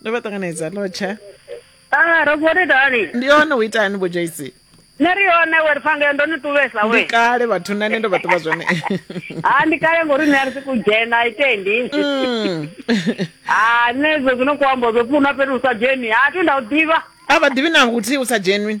ndo vha ṱanganedza lotsha a ah, ro vhori dani ndi hone u itani vho joyce nṋe ri hone we ri fangea ndo ni tuvesa we kale vhathu na nṋe ndo vha ṱuvha zwone ha ah, ndi kale ngori nṋe a ri si ku dzhena itendi ha mm. ah, nṋe zwo zwino ku ambo zwo pfuna fhethu u sa dzheni ha thi nda u ḓivha a vha ḓivhi na nguthihi u sa dzhenwi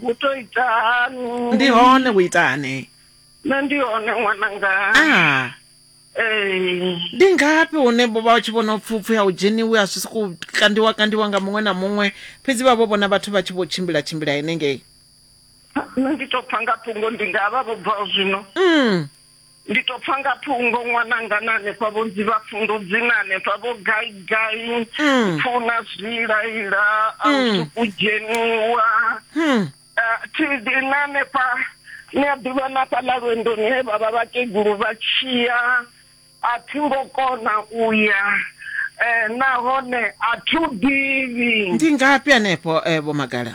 hu to itani ndi hone hu itani nṋe ndi hone ṅwananga ah ee ndi ngafhi hune vho vha tshi vhona pfupfu ya u dzheniwe a zwi sokou kandiwa kandiwa nga muṅwe na muṅwe fhedzi vha vho vhona vhathu vha tshi vho tshimbila tshimbila henengei nṋe ndi to pfa nga thungo ndi nga vha vho bvaho zwino mm Ndi to pfa nga phungo ṅwananga na hanefha vho nzivha pfundu dzina hanefha vho gai gai mm. pfuna zwilaila a u mm. suku dzheniwa hmm. eh, tidi na hanefha ni a ḓivha na fhaḽa lwendoni he vha vha vhakegulu vha tshiya a thi ngo kona u ya um nahone a thi u ḓivhi ndi ngafhi hanefho um eh, vho magala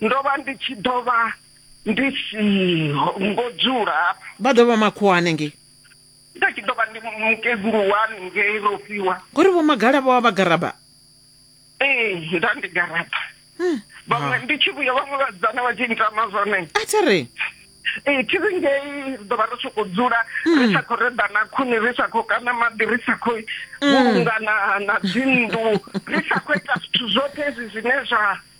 ndo vha ndi tshi ḓo vha ndi siho ngo dzula vha ḓo vha makhuwa hanengei nda tshi ḓo vha ndi mukegulu wa hanengei rofhiwa ngori vho magala vho vha vha garaba ee nda ndi garaba hmm. vhaṅwe ndi tshi vhuya vhaṅwe vhadzana vha tshi ntama zwone a thi ri ee thi ri ngei ri ḓo vha ri sokou dzula ri hmm. sa khou reḓana khuni ri sa khou kana maḓi ri sa khou hmm. vhulungana na dzinnḓu ri sa khou ita zwithu zwoṱhe hezwi zwine zwa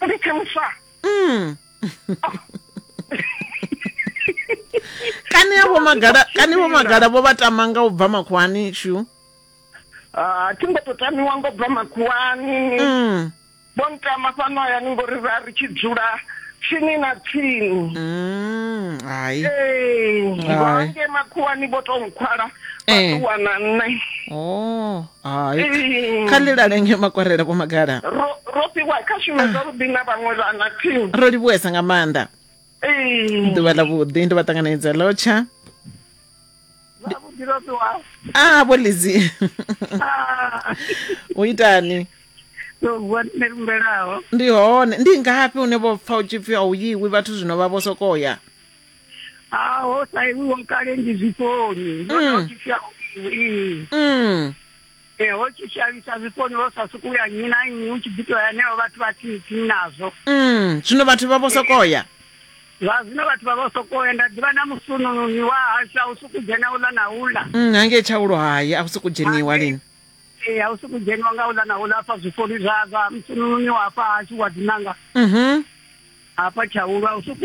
Go di theoswa. Mm. kani avho magada kani vho magada vho vha tamanga u bva makhuwani shu ah, a thi ngo to tamiwa ngo bva makhuwani mm. vho ntama fhano hayani ngori ra ri tshi dzula tsini na tsini mm, hai ee makhuwani vho to nkhwala vha eh. ṱuwa na nṋe oh. hai Ee. kha ḽilale nge makwarela vho magala ro ro fhiwa kha shume zwavhuḓi na vhaṅwe vhana team ro livhuwesa nga maanḓa Ee. ḓuvha ḽa vhuḓi ndi vha ṱanganedza lotsha zwavhuḓi ro fhiwa a vho lizi Ah. u itani Ndo vuwa nṋe lumbelaho ndi hone ndi ngafhi hune vho pfa u tshi pfi a u yiwi vhathu zwino vha vho sokou ya ha ho saiwiwa kale ndi zwiponi ndo mm. no tshifya ii mm. e ho tshi shavhisa zwiponi ho sa sukuya nnyi na nnyi u tshi ḓi toya neo vhathu vha tsini nazwo mm. zwino vhathu vha vho sokoya vha zwino vhathu vha vho sokoya nda ḓivha na musunununi wa hashu a u suku dzhena uḽa na uḽa mm, hangei tshaulo hayi a u suku dzheniwa lini ee a u suku dzheniwa nga uḽa na uḽa afha zwiponi zwa zwa musunununi wa hafha hashu wa dinanga mm -hmm. hafha tshaulwa u suku